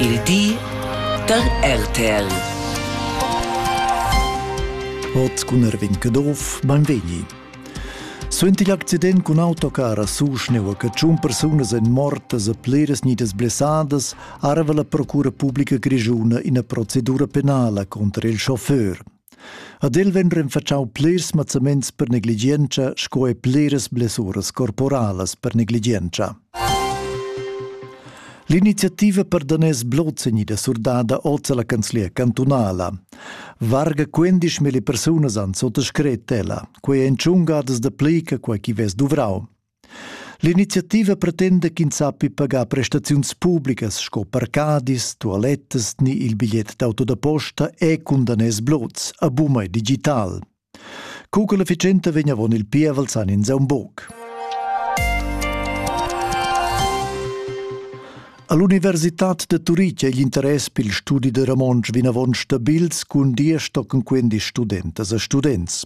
Il di da RTL. Ot cun Erwin Kedorf beim Vegni. Suenter l'accident cun autocar a Suschneu che tschun persunas èn mortas e pliras nidas blessadas, arva la Procura Publica Grischuna ina procedura penala contro il chauffeur. Ad el vegn renfatschau plirs mazzaments per negligientscha sco e pliras blessuras corporalas per negligientscha. L'iniziativa per daners Blozzegni da surdada oz alla canzlia cantunala. Varga 15.000 persunas han sottascret ella, quei ein tschungadas da plica quei chi vess duvrau. L'iniziativa pretenda ch'ins sappi pagar prestaziuns publicas sco parcadis, tualettas ni il bigliet d'auto da posta e cun daners blots a bumai digital. Co che l'efficienza vegn avon il pievel san ins aun buc. All'Universitad de Turitg è l'interess per il studi de Ramonsch vinavon stabils cun dir stocken quindi studentas e students.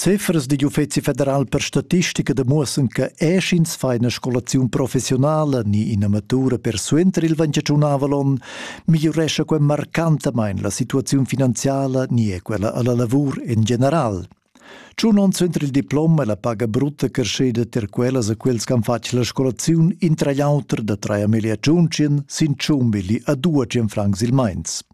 Ziffers digl Uffeci federal per statistica demuossan che eschins fa ina scolaziun professionala ni ina matura per suenter il ventgianunavel onn migliurescha quei marcantamain la situaziun finanziala ni è quella alla lavur en general. Tschun onns suenter il diplom è la paga brutta creschida ter quellas a quels che han fatg la scolaziun intra l'auter da 3 miglia tschun sin 100 milli a 200 francs il meins.